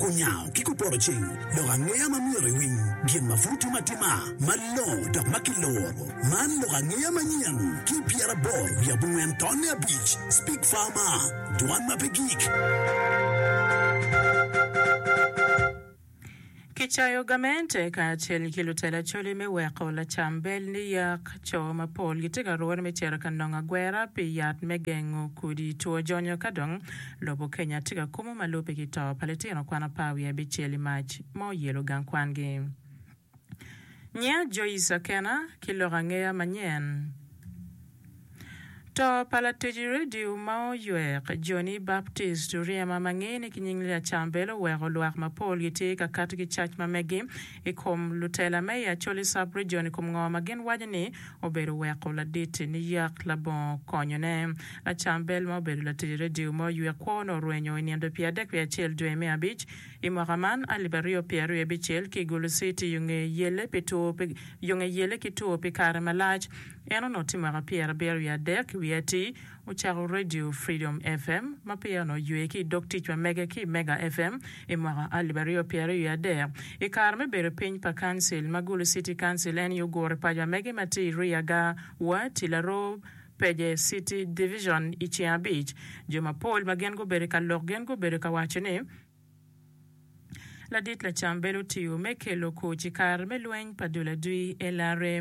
Kunyayo ki kuporo cing, lok angeya ma myero iwiny, gin ma pud timo atima malongo dok ma kiluro. Man lok angeya manyen ki i pyeraboro wiye abongwen tonne abic, Speak Farmer, Dwan ma pe gik. Kicayo gamente kacel ki lutela coli me weko lacam bel niyak. Co mapol gitye ka rwone me cito ka nongo agwera pi yat me gengo kodi two jonyo ka dong Lobo Kenya tye ka kumo ma lubbe ki to pa litino kwan apar wiye abicel i mac ma oyelo gang kwangi. Nyinga Joyce Akena ki lok angeya manyen. To pa latic redio ma oywek, Johnny Baptist Oryema ma ngeye ni ki nying Lee Achambel oweko lwak mapol gitye ka kato ki cac ma megi i kom lutela me i Acholi Sub-Region i kom ngo ma gin waco ni obedo weko ladit niyak labongo konyone. Lacam bel ma obedo latic redio ma oywe kwo-ni orwenyo i nindo pi adek pi acel dwe me abic i mwaka man alip aryo pye aryo abicel ki i Gulu City yo nge yelle pi two pi yo nge yelle ki two pi kare malac. En onoti mwaka pyerabiro wiye adek wiye atir Ocako Radio Freedom FM ma peya onongo oywe ki i dog tic pa mege ki Mega FM i mwaka alip aryo pyeraryo i adek. I kare me bedo piny pa Council ma Gulu City Council en aye oguro paco pa mege ma tye i Riaga, Wa, Tilaro, Peje City Division i ceng abic. Jo mapol ma gin gubedo ka lok gin gubedo ka waco ni, Ladit lacam bedo otiyo me kelo kuc i kare me lweny pa dul adwi LRA.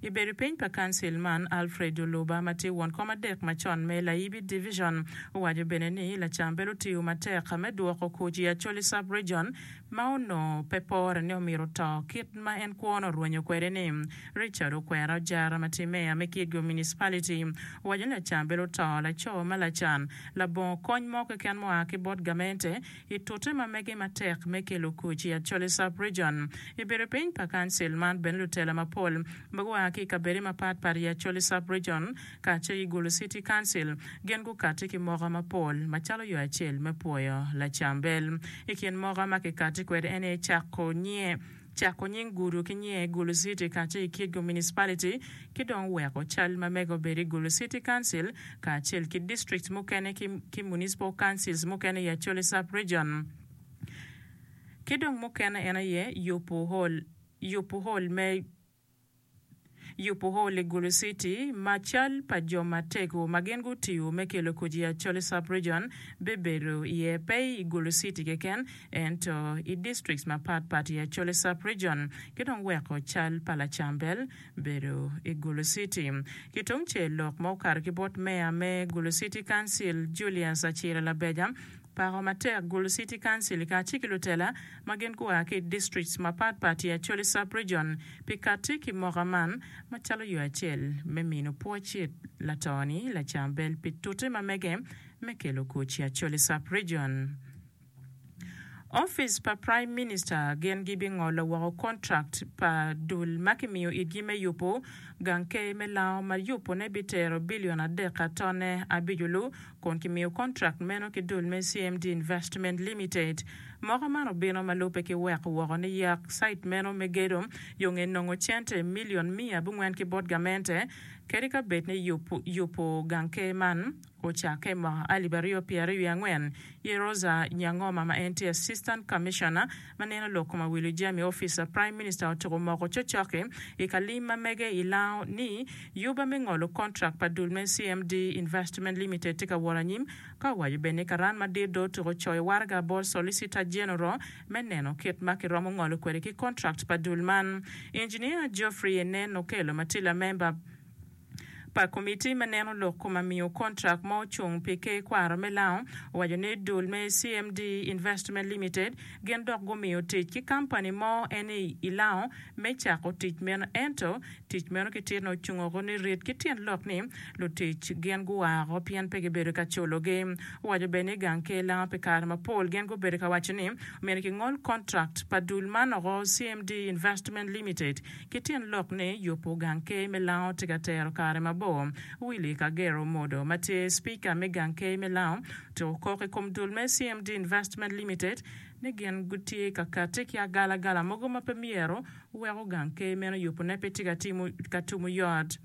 I bedo piny pa Council man, Alfred Oluba ma tye won kom adek macon me Layibi Division owaco bene ni lacam bedo otiyo matek me dwoko kuc i Acholi Sub-Region ma onongo pe pore ni omito to kit ma en kwono orwenyo kwede ni Richard okwero ajara ma tye meya me Kigyo Municipality owaco ni Acan bedo to laco ma lacan, labongo kony mo keken mua ki bot gamente i tute ma mege matek me kelo kuc i Acholi Sub Region. I bedo piny pa Kancil man bene lutela mapol ma gua ki i kabede mapat pat i Acholi Sub Region kacel ki Gulu City Council gin gukati ki moka mapol macalo yo acel me pwoyo lacambel. I kin moka ma kikati kwede ene cako nye cako nying gudo ki nyiye i Gulu City kacel ki Kieggo Municipality, ki dong weko cal ma mege obed i Gulu City Council kacel ki district mukene ki ki municipal councils mukene i Acholi Sub Region ki dong mukene en aye yubu hall yubu hall me Yubu hol i Gulu City ma cal pa jo matego ma gin gutiyo me kelo koci Acholi Sub-Region bibedo iye pe i Gulu City keken ento i districts mapat pat i Acholi Sub-Region ki dong weko cal pa Lacambel bedo i Gulu City. Ki tungcel lok ma okato ki bot Meya me Gulu City Council Julius Acira Labeja pako matek Gulu City Council kacel ki lutela ma gin gua ki i districts mapat pat i Acholi Sub-Region pi katti ki moka man macalo yo acel me mino pwoc it lato-ni lacam bel pi tute ma mege me kelo kuc i Acholi Sub-Region. Opic pa Prime Minister gin gibingolo woko contract pa dul ma kimiyo itgi me yubo gang ker me Lango ma yubone bitero bilion adek ka tone abico lu kun kimiyo kontrakt meno ki dul me CMD Investment Limited. Moko man obino ma lubbe ki weko woko ni yak cite meno me gedo yo nge nongo cente milion miya abongwen ki bot gamente, kadi ka bed ni yub yubo gang ker man ocakke mwaka alip aryo pyeraryo wiye angwen. Yeroza Nyangoma ma en tye Assistant Commissioner Ma neno lok koma wilo jami ofica Prime Minister otuko moko cocoki i ka lim ma mege i Lango ni yuba me ngolo contract pa dul me CMD Investment Limited tye ka wot anyim ka owaco bene ni karan madit dong otuko coyo waraga bot Solicitor General me neno kit ma ki romo ngolo kwede ki contract pa dul man Engineer Geoffrey Enen Okello ma tye lamemba pa Komitti me Neno Lok Kom Amiyo Kontrak ma Ocung pi Ker Kwaro me Lango owaco ni dul me CMD Investment Limited gin dok gumiyo tic ki kampani mo eni i Lango me cako tic meno ento tic meno ki tir-ni ocung oko ni rit ki tyen lok ni lutic gin gua oko pien pe gibedo ka culogi. Owaco bene ni gang ker Lango pi kare mapol gin gubedo ka waco ni myero kingol kontrak pa dul man oko CMD Investment Limited Ki tyen lok ni yubo gang key me lango tye ka tero kare mabor, Willy Kagere Omodo ma tye Speaker me gang key me lango otuko kok i kom dul me CMD Investment Limited ni gin gutye ka kati ki agalagala mogo ma pe myero weko gang key meno yubone pe tye ka tumo yot.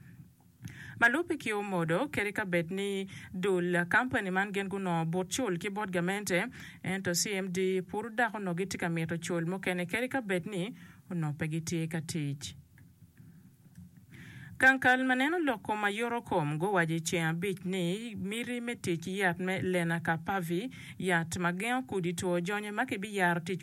Ma lubbe ki omodo, kadi ka bed ni dul kampani man gin gunongo but cul ki bot gamente, ento CMD pud dok onongo gitye ka mito cul mukene kadi ka bed ni onongo pe gitye ka tic. Gang kal ma neno lok kom ma yoto kom guwaco i ceng abic ni miti me tic ki yat me Lenacapavir, yat ma gengo kudi two jonyo ma kibiyaro tic wek